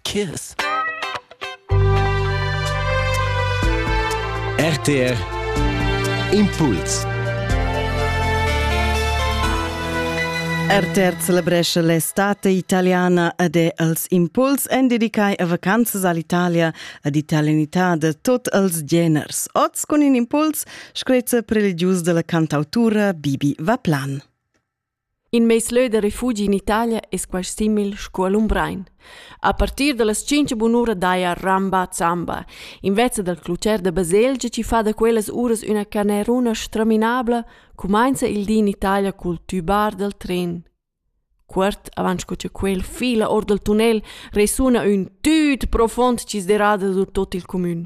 Kiss. RTR Impuls. RTR celebresce l'estate italiana ed è als impuls en dedicai a vacanzas all'Italia ed italianità de tot els geners. Oz con in impuls screzza religius della cantautura Bibi Vaplan. In meis lö da refugi in Italia es quaist simil scu a Lumbrein. A partir da las tschinch bunura daja Ramba Zamba, invezza dal clucher da baselgia chi fa da quellas uras üna caneruna straminabla, cumainza il di in Italia cul tübar dal tren. Cuort avant sco cha quel fila our dal tunnel resuna ün tüt profond sdisderà da tot il cumün.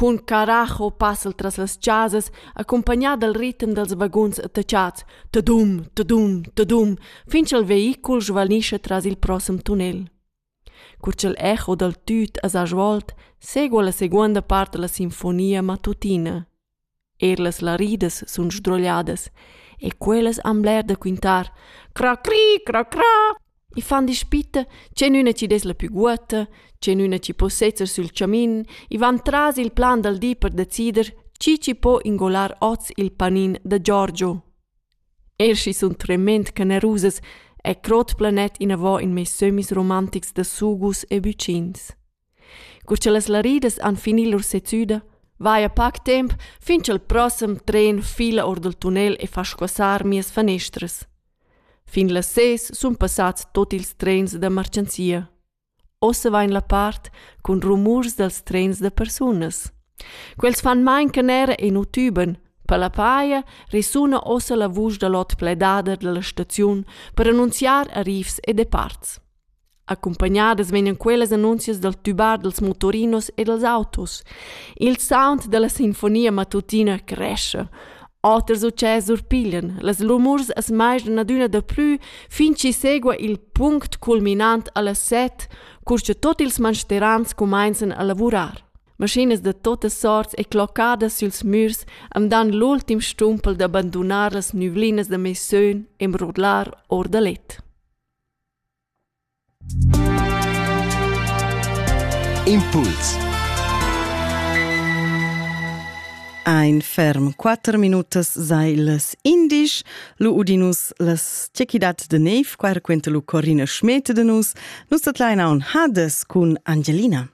Cun caracho passa'l tras las chasas accumpagnà dal ritem dals vaguns attachats tadum, tadum, tadum fin cha'l veicul svanischa tras il prossem tunnel. Cur cha'l echo dal tüt as ha svolt, segua la seguonda part da la sinfonia matutina. Er las laridas sun sdrogliadas e quellas han bler da quintar. Cra cri, cra cra. I fan dispitta ch'enüna chi dess la pü guotta, ch'enüna chi po sezzer sül chamin, i van tras il plan dal di per decider chi chi po ingolar oz il panin da Giorgio. Er schi sun tremend generusas e crot planet inavò in meis sömmis romantics da sugus e bücins. Cur cha las laridas han fini lur sezüda, vaja pac temp fin cha'l prossem tren fila our dal tunnel e fa squassar mias fanestras. Fin las ses sun passats tuot ils trens da marchanzia. Ossa vain la part cun rumurs dals trens da persunas. Quels fan main canera e nu tüban. Per la paja resuna ossa la vusch da l'ot pledader da la staziun per annunziar arrivs e departs. Accumpagnadas vegnan quellas annunzias dal tubar dals motorinos e dals autos. Il sound da la sinfonia matutina crescha. Oters utschè surpiglian. Las rumurs as maisdan adüna daplü fin chi segua il punct culminant a las set, cur cha tot ils mansterans cumainzan a lavurar. Maschinas da totas sorts e cloccadas süls mürs am dan l'ultim stumpel da bandunar las nüvlinas da meis sön e mrodlar or da let. Impuls Ein ferm quatter minutas sei las indisch. Lu udinus las tschechidat de nev, quer quente lu Corina Schmete de nus. Nus dat leina un Hades cun Angelina.